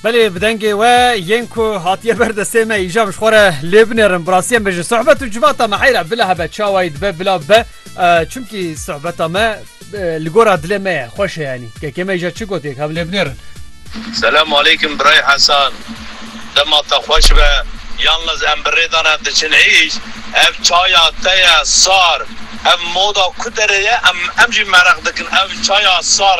Belê bi dengê we yên ku hatiye ber destê me îja ji xwe re lê binerin birasiye me ji sohbet û civata me heyra bila hebe çawayî dibe bila be çimkî sohbeta me li gora dilê me ye xweş heyanî kekê me îja çi gotê hev lê binerin. Selam aleykum birayê Hesan dema te xweş be yanliz em bi rêdana diçin êş ev çaya te ye sar ev moda ku derê ye em em jî mereq dikin ev çaya sar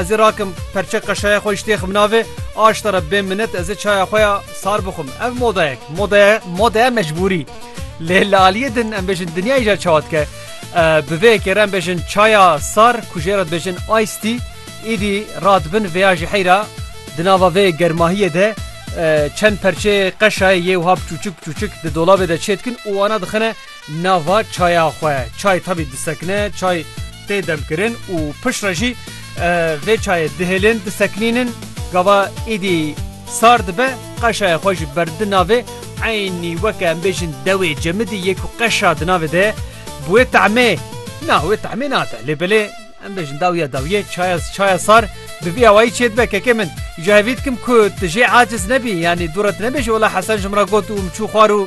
Ez ê rakim perçe qeşaya xwe îştêxim navê aşta re bê minet ez ê çaya xwe ya sar bixwim. Ev modayek modaya modaya mecbûrî. Lê li aliyê din em bêjin dinyayê jî çawa dike. Bi vê yekê re em bêjin çaya sar ku jê re dibêjin ice tea îdî radibin vêya jî heyra. Di nava vê germahiyê de çend perçeyê qeşayê yê wiha biçûçik biçûçik di dolabê de çêdikin û wana dixine Nava çaya xwe çay tavî disekine, çay tê demkirin û pişt re jî vê çayê dihêlin, disekinînin. Gava êdî sar dibe, qeşaya xwe jî berdidin navê. Eynî weke em bêjin dewê cemidî yê ku qeşa di navê de ye. Bi wê tahmê, na wê tahmê nate lê belê em bêjin dawiya dawiyê çaya çaya sar bi vî awayî çê dibe. Kekê min ji hevî dikim ku tu jê aciz nebî yanî dû re tu nebêjî wela Hesen ji min re got û min çû xwar û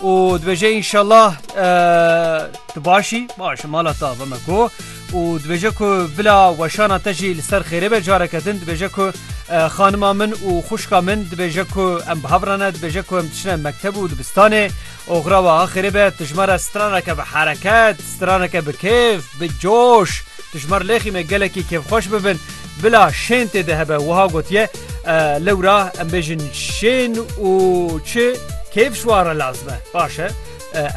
û dibêje înşellah tu başî baş mala te ve me ku û dibêje ku bila weşana te jî li ser xêrê be careke din dibêje ku xanima min û xuşka min dibêje ku em bi hev re ne dibêje ku em diçine mekteb û dibistanê oxira we ha xêrê be tu ji me re straneke bi hereket straneke bi kêf bi coş tu ji me lêxîne gelekî kêfxweş bibin Bila şên tê de hebe wiha gotiye, Lewra em bêjin şên û çi kêf ji wan re lazim e. Baş e.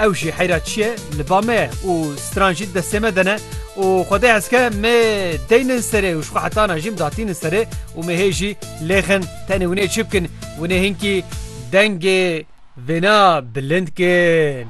Ew jî heyra çi ye li ba me ye û stran jî di destê me de ne û xwedê hezke me deynin serê û ji xwe hetana jî midatînin serê û me hê jî lêxin. Tenê hûn ê çi bikin? Hûn ê hinkî dengê vêna bilind kin.